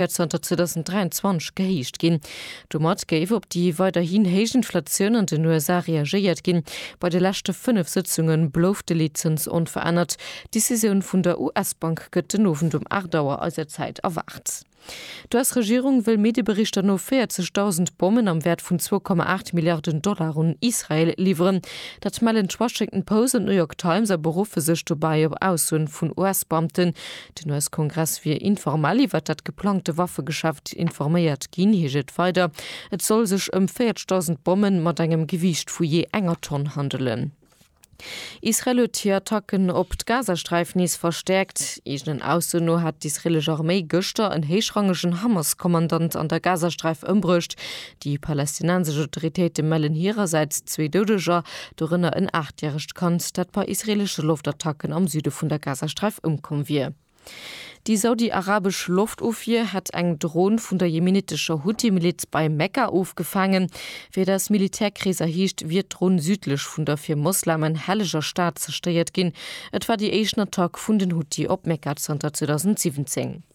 wäert zanter 2023 gehéicht ginn. Domat géif op déi weiderhin héich Inflatioun an den USA reagéiert ginn. Bei de leschte fënnef Sëtzunge blouf de Leetzëns onverännert. D'Decisioun vun der US-Bank gëtt den Owend um 8 Auer eiser Zäit erwaart. D'US-Regierung wëll Medieberichter no 40.000 Bommen am Wäert vun 2,8 Milliarden Dollar un Israel liwweren. Dat mellen d'Washington Post an d'New York Times a beruffe sech dobäi op Aussoen vun US-Beamten, Den US-Kongress wier informell iwwert dat geplangte Waffegeschäft informéiert ginn, heescht et weider. Et soll sech ëm 40.000 Bomme mat engem Gewiicht vu jee enger Tonn handelen. Israel huet hir Attacken op d'Gazasträif nees verstäerkt. Eegenen Ausso no hat d'israelesch Arméi gëschter en héichrangegen Hamas-Kommandant an der Gazasträif ëmbruecht, Déi palästinensesch Autoritéite mellen hirersäits zwee Doudeger, dorënner en aachtjäregt Kand, dat bei israeelesche Loftattacken am Süde vun der Gazasträif ëmkomm wier. Déi saudi-arabesch Loftofwier hätt eng Dron vun der jemenittescher Huthi-Miliz bei Mekka ofgefaangen. Wéi et aus Militärkreeser heescht, wier d'Dron südlech vun der fir Moslamen helleger Stad zerstéiert ginn. Et war déi éischten Attack vun den Huthi op Mekka zanter 2017.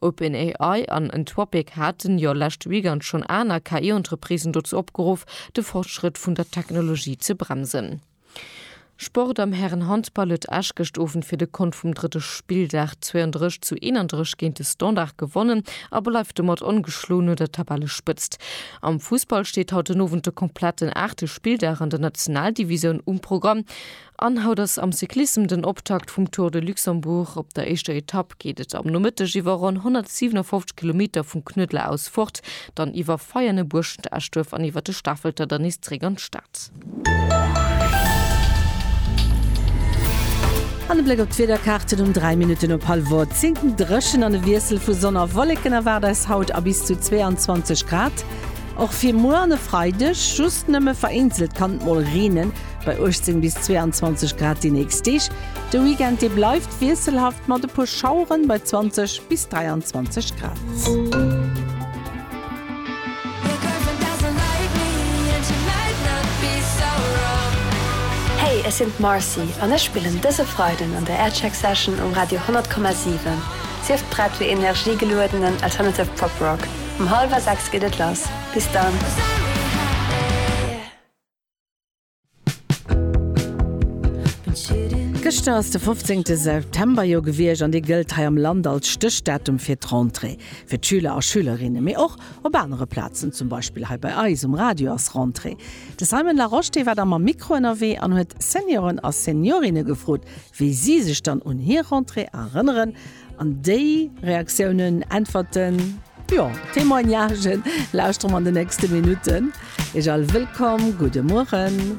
OpenAI an Anthropic haten jo leschte Weekend schonn aner KI-Entreprisen dozou opgeruff, de Fortschrëtt vun der Technologie ze bremsen. Sport, Am Hären-Handball huet Esch gëscht Owend fir de Kont vum drëtte Spilldag 32 zu 31 géint de Standard gewonnen a bleift domat ongeschloen un der Tabellespëtzt. Am Fussball steet haut den Owend de kompletten aachte Spilldag an der Nationaldivisoun um Programm. An haut ass am Cyclissem den Optakt vum Tour de Luxembourg. Op der éischter Etapp geet et am Nomëtteg iwwer ronn 157 Kilometer vum Knuedler aus fort, dann iwwer Veianen, Buerschent, Eschduerf an iwwer de Stafelter dann nees zréck an d'Stad. An e Bléck op d'Wiederkaarten um 3 Minutten op hallwer 10. Dréchen an e Wiessel vu Sonn a Wolleken erwaart eis haut a bis zu 22 Grad och fir muer an e Freideg. Just nëmme vereenzelt kann et mol reenen. Bei 18 bis 22 Grad déi nächst Deeg. De Weekend dee bleift wiesselhaft mat e puer Schaueren bei 20 bis 23 Grad. Hey, ech sinn d'Marcy an ech spillen dëse Freiden an der Aircheck Session um Radio 100,7. Sief prett fir energiegeluedenen alternative Pop-Rock. Um hallwer 6 geet et lass. Bis dann! Gëschter ass de 15 September jo gewiescht an dee gëllt hei am Land als Stéchdatum fir d'Rentrée fir d'Schüler a Schülerinne. Mee och op anere Plazen, zum Beispill hei bei eis um Radio ass Rentrée. De Simon Larosche dee war da mam Mikro ënnerwee an huet Senioren a Seniorinne gefrot, wéi si sech dann un hir Rentrée erënneren. An déi Reaktiounen, Äntwerten, jo Témoignagen lauschtere mer an de nächste Minutten. Ech all wëllkomm, gudde Mueren.